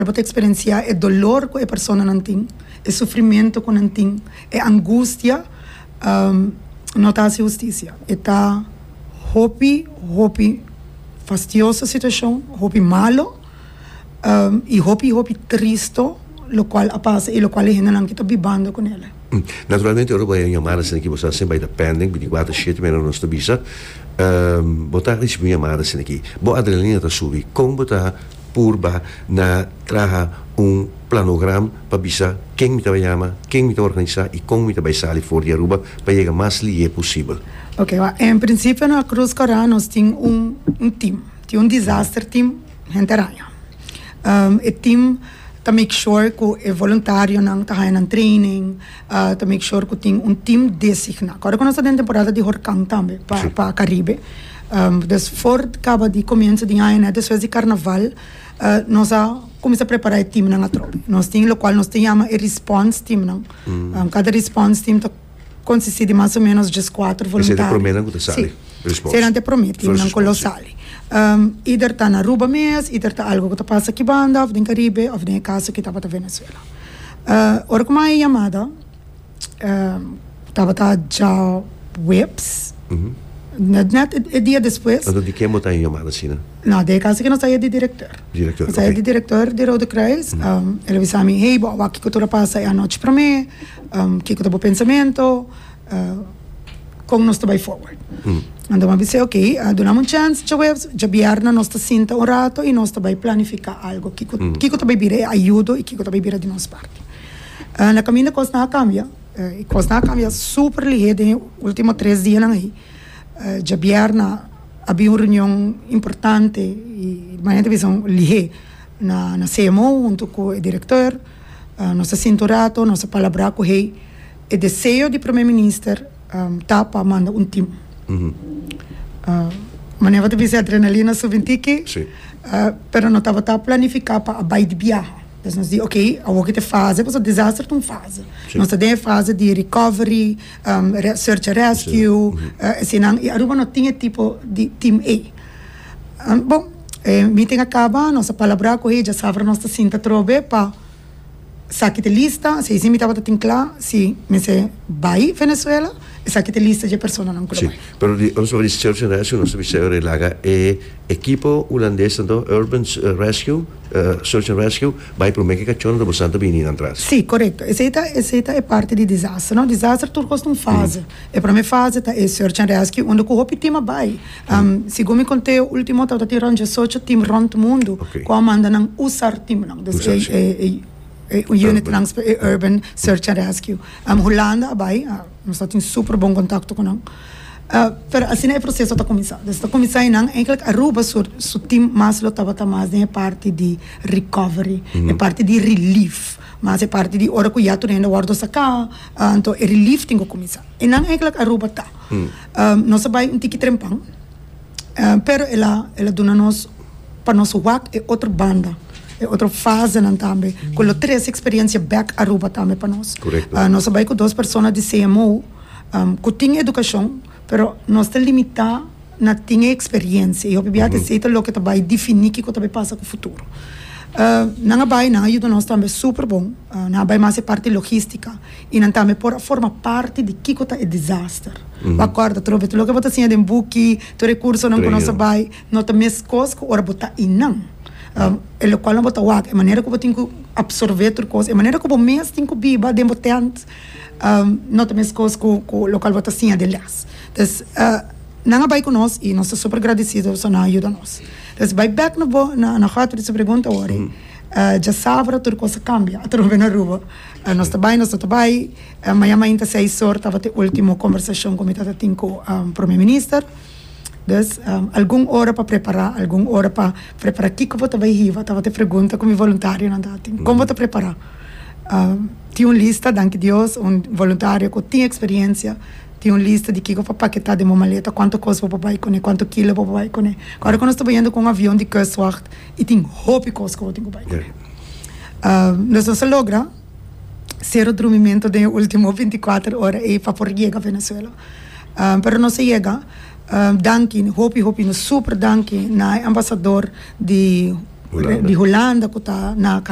E por ta eksperensiá e dolor ku e personanan tin, e sufrimentu ku nan tin, e angustia. No ta hasi hustisia. E ta hopi, hopi fastioso situashon, hopi malu i hopi, hopi tristu lokual a pasa i lokual e hendenan ki ta bibando ku nel. Naturalmente ora bo haña un yamada asina aki bo sa siempre a hita pending binticuater shete mira nos ta bisa. Bo ta risibi un yamada asina aki, bo adrenalina ta subi. Kon bo ta. purba na traha un planogram pa bisa ken mi ta bai yama, ken mi ta organisá i kon mi ta bai sali for di Aruba pa yega mas lihé posibel. Oke wak, en prinsipio na Cruz Coran nos tin un un tim, tin un disaster tim henter haña. E tim ta make sure ku e voluntarionan ta haña nan training, ta make sure ku tin un tim designá. Ko ora ku nos ta den temporada di horkan tambe pa pa Karibe. Des for kaba di komienso di aña, despues di karnaval, nos a kuminsá prepará e timnan atrobe. Nos tin lokual nos ta yama e response teamnan. Kada response team ta konsistí di mas o ménos djes kuater voluntario. Esei ta e promé nan ku ta sali, response. Sí, eseinan ta e promé teamnan ku lo sali. Ider ta na Aruba mes, ider ta algu ku ta pasa aki banda òf den Karibe òf den e kaso ki tabata Venezuela. Ora ku mai e yamada. tabata dja webs. Net, net e, e dia despues. Anto di ken bo ta e yama asina? No, de e kasa ke nos ta e di direktor. Direktor, ok. Nos ta e di direktor di Rode Kruis. El a bisa mi, hey, bo a wak kiko tur a pasa e anochi promé, kiko ta bo pensamentu, kon nos ta bai forward. Anto bo a bis'é, ok, duna'm un chèns dja webs, dja bierna nos ta sinta un ratu i nos ta bai planifiká algu, kiko, kiko ta bai bira e ayudo i kiko ta bai bira di nos parti. Na kaminda kosnan a kambia i kosnan a kambia super lihé den e último tres dianan ei. Djabièrna a bin un reunion importante i manera ta bisa lihé na na cmo huntu ku e direktor. Nos a sinta un ratu, nos a palabrá ku hei. E deseo di Prome Minister ta pa manda un tim. Manera ta bisa e adrenalina a subi un tiki pero no tabata planifiká pa a bai di biaha. Entonces nos di ok, awor ki ta e fase, pasobra desastre ta un fase. Nos ta den e fase di recovery, search and rescue, esenan, y Aruba no tin e tipo di team ey. Bo, e meeting a caba, nos a palabra cu hei, djasabra nos ta sinta atrobe pa sa kita lista, si esey mi tabata tin cla si mester bay Venezuela, esaki ta e lista dje personanan cu lo bay. Si, pero nos tabata di search and rescue, nos ta bisa aver e laga e ekipo Hulandes anto, urban rescue. Search and Rescue bai prome ke kachona ta bosan ta bini nan tras. Si, korekto. Esei ta esei ta e parti di disaster. No, disaster tur kos ta un fase. E prome fase ta e Search and Rescue unda ku hopi tim a bai. Segun mi konteo ultimo tabata tin rònt diasocho tim rònt mundu ku a manda nan usar timnan. Dus e e e unit nan, e urban search and rescue. Hulanda a bai. Nos ta tin super bon kontakto ku nan. Pero asina e proseso ta kuminsá. Desde ta kuminsá i nan enklik Aruba su tim mas lo tabata mas den e parti di recovery, e parti di relief, mas e parti di ora ku ya tur hende a wòrdu saká, anto e relief tin ku kuminsá. I nan enklik Aruba ta. Nos a bai un tiki trempan. pero el a el a duna nos pa nos wak e otro banda e otro fasenan tambe ku lo trese eksperensia bek Aruba tambe pa nos korekto nos a bai ku dos persona di CMO ku tin edukashon pero nos ta limitá na tin e eksperensia i hopi bia ta esei ta loke ta bai definí kiko ta bai pasa ku futuro nan a bai nan a yuda nos tambe super bon nan a bai mas e parti logística. I nan tambe por a forma parti di kiko ta e disaster. Bo a kòrda tur hopi tur loke bo ta siña den buki, tur e kursonan ku nos a bai, no ta meskos ku ora bo ta einan. E lokual nan bo ta wak, e manera ku bo tin ku apsorbé tur kos, e manera ku bo mes tin ku biba den bo tènt, no ta meskos ku ku lokual bo ta siña den lès. Pues, nan a bai ku nos i nos ta super gradisido pasobra nan a yuda nos. Pues bai bèk na bo na na hòt di su pregunta wòrdu, djasabra tur kos a kambia, a tur hopi na Aruba. Nos ta bai, nos no ta bai. Maña mainta seis or tabata e ultimo combersacion cu mi ta ta tin cu Prome Minister. Dus, algun ora pa prepara, algun ora pa prepara kico bo ta bai hiba, tabata e pregunta cu mi voluntarionan ta tin. Con bo ta prepara? Tin un lista, danki Dios, un voluntario cu tin experiencia, tin un lista di kico pa paketa den bo maleta, cuanto cos bo por bai cune, cuanto kilo bo por bai cune. Cu ora cu nos ta bayendo cu un avion di Kustwacht. y tin hopi cos cu bo tin cu bay cu el. Nos dos a logra cero drumimento den e ultimo binticuater ora ey pa por yega Venezuela. Pero nos a yega danki, hopi hopi nos super danki na e ambasador di Hulanda cu ta na.